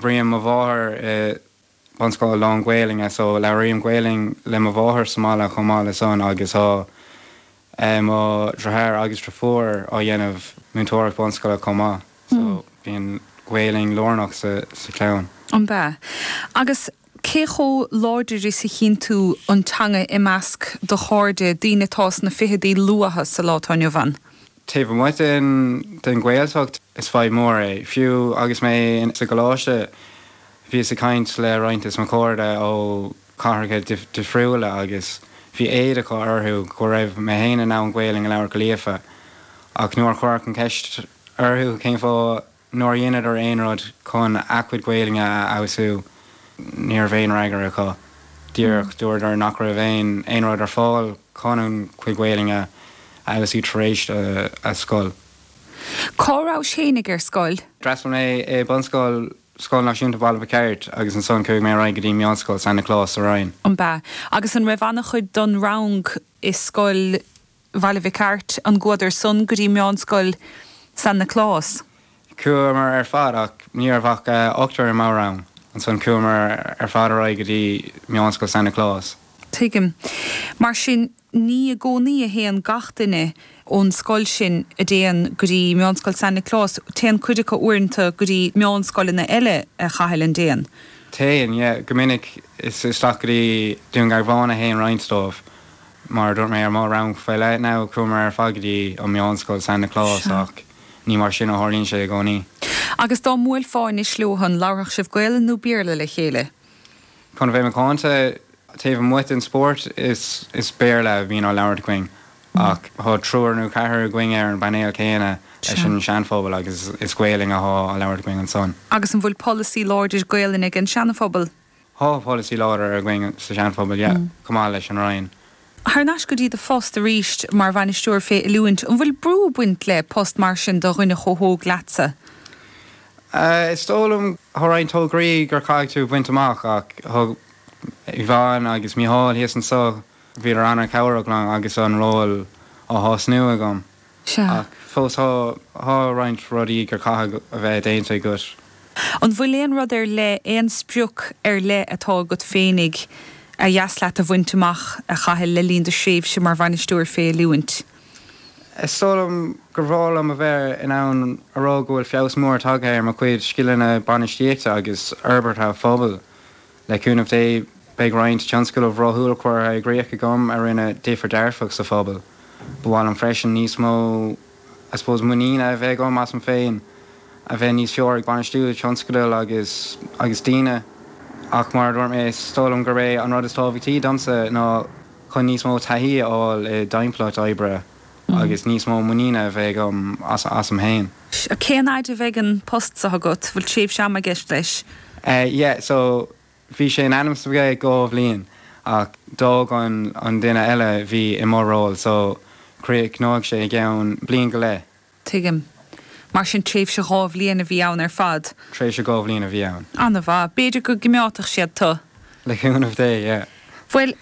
Bhí mo mháthair, i bunscoil lán-Ghaelainne, so labhraím Gaelainn le mo mháthair sa mbaile chomh maith le san agus tá mo dhriotháir agus driofúr á dhéanamh múinteoireacht bunscoile chomh maith so bíonn Gaelainn lárnach sa chlann. Ab ea? Agus cé chomh láidir is a chíonn tú an teanga i measc do chairde, daoine atá sna ficheadaí luatha sa lá atá inniu ann? Taobh amuigh den Ghaeltacht, is fadhb mhór é. Fiú agus mé sa gcoláiste, bhíos ag caint le roinnt de mo chairde ó chathracha difriúla agus bhí éad orthu go raibh mé féin in ann Gaolainn a labhairt go líofa, ach nuair a chuireas an cheist orthu cén fáth, Nár dheineadar aon rud chun a gcuid Gaelainne a fheabhsú? Ní raibh aon fhreagra acu. Díreach dúradar nach raibh aon rud ar fáil chun a gcuid Gaelainne a fheabhsú tar éis na scoile. Cá rabhais féinig ar scoil? D'fhreastal mé ar bunscoil Scoil Náisiúnta Bhaile Mhic Airt agus ansan chuaigh mé ar aghaidh go dtí Meánscoil San Nioclás sa Rinn. Ab ea? Agus an raibh an-chuid don rang i Scoil Bhaile Mhic Airt, an gcuadar san go dtí Meánscoil San Nioclás. Chuamar ar fad ach ní raibh ach ochtar im rang, ansan chuamar ar fad ar aghaidh go dtí Meánscoil San Nioclás. Tuigim. Mar sin, ní i gcónaí a théann gach duine ón scoil sin a dtéann go dtí Meánscoil San Nioclás, téann cuid acu uaireanta go dtí meánscoileanna eile a Chathail, an dtéann. Téann, yeah. Go minic is isteach go dtí Dún Garbhán a théann roinnt dóibh. Mar a dúirt mé ó mo rang faoi leith, chuamar ar fad go dtí Meánscoil San Nioclás ach ní mar sin a tharlaíonn sé i gcónaí. Agus dá mbuailfeá anois leo san, an labharfadh sibh Gaolainn nó Béarla le chéile? Chun a bheith macánta, taobh amuigh den spórt, is Béarla a bhíonn á labhairt againn. Ach thá triúr nó ceathrar againn ar an bpainéal céanna leis an Seanphobal agus is Gaolainn athá á labhairt againn ansan. Agus an bhfuil polasaí láidir Gaolainne ag an Seanphobal? Thá polasaí láidir againn sa Sean-Phobal, yeah, chomh maith leis an Rinn. Thar n-ais go dtí do phost arís mar Bhainisteoir fé Oiliúint. An bhfuil brú ag baint le post mar sin do dhuine chomh hóg leatsa? Eh, is dóigh liom, thá roinnt tograí gur caithfidh tú bhaint amach ach thug Yvonne agus Mícheál thíos anso, bhíodar an-chabhrach liom agus an ról á thosnú agam. Sea. Ach fós, thá roinnt rudaí gur caithfidh a bheith déanta agat. An bhfuil aon rud ar leith, aon sprioc ar leith atá agat féinig ar dheas leat a bhaint amach, a Chathail, le linn do thréimhse mar bhainisteoir fé oiliúint? Is dóigh liom gur bhreá liom a bheith in ann a rá go bhfuil feabhas mór tagtha ar mo chuid scileanna bainistíochta agus forbartha pobail. Le cúnamh Dé, beidh roinnt tionscadal rathúil curtha i gcríoch agam a rinne difear dearfach sa phobal. Ba mhaith liom freisin níos mó, I suppose, muiníne a bheith agam asam féin, a bheith níos fearr ag bainistiú tionscadal agus agus daoine. Ach mar a dúirt mé, is dóigh liom gurb é an rud is tábhachtaí domsa ná chun níos mó taithí a fháil i dtimpeallacht oibre. agus níos mó muiníne a bheith agam asam fhéin. Sea, cén fhaid a bheidh an post seo agat, bhfuil tréimhse ama i gceist leis? Yeah, so bhí sé in ainm is a bheith go ceann dhá bhliain ach d'fhág an duine eile a bhí i mo ról so críochnóidh sé i gceann bliain go leith. Tuigim. Mar sin tréimhse dhá bhliain a bhí ann ar fad? Tréimhse dhá bhliain a bhí ann. An-mhaith. B'fhéidir go gcoimeádfadh siad tú. Le cúnamh Dé, yeah. Bhuel,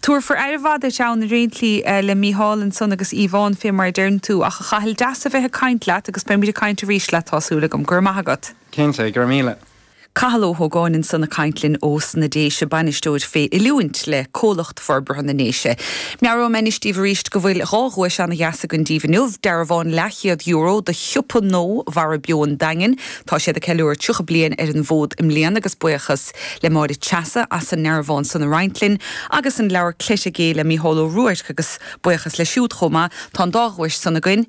tabharfar aire mhaith duit ann ar aon tslí, le Mícheál ansan agus Yvonne, fé mar a deireann tú. Ach a Chathail deas a bheith ag caint leat, agus beimid ag caint arís leat, tá súil agam. Go raibh maith agat. Cinnte, go raibh míle. Cathal Ó hÓgáin ansan ag caint linn ó sna Déise, Bainisteoir fé Oiliúint le Comhlucht Forbartha na nDéise. Meabhróidh mé anois díbh arís go bhfuil dhá dhuais ana-dheas againn díbh inniu, dearbhán leath-chéad euro do shiopa Ó Mhara Beo an Daingin, tá siad ag ceiliúradh 30 bliain ar an bhfód i mbliana agus buíochas le Máire Treasa as an ndearbhán san a roinnt linn, agus an leabhar Cleite Gé le Mícheál Ó Ruairc agus buíochas leis siúd chomh maith, tá an dá dhuais san againn.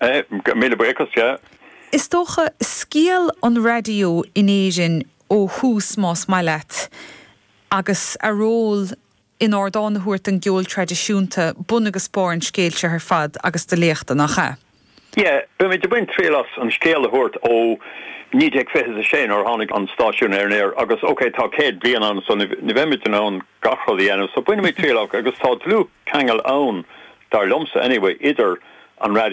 Míle buíochas, yeah. Is dócha, scéal an raidió in Éirinn ó thús más maith leat, agus a ról in ardán a thabhairt don gceol traidisiúnta, bun agus barr an scéil seo ar fad agus do léachta, nach ea? Yeah, beimid ag baint triail as an scéal a thabhairt ó naoi déag fiche is a sé nuair a tháinig an stáisiún ar an aer agus ok tá céad bliain ann so ní bheimid in ann gach rud a dhéanamh so bainfimid triail as agus tá dlúth ceangal ann dar liomsa anyway idir an raidió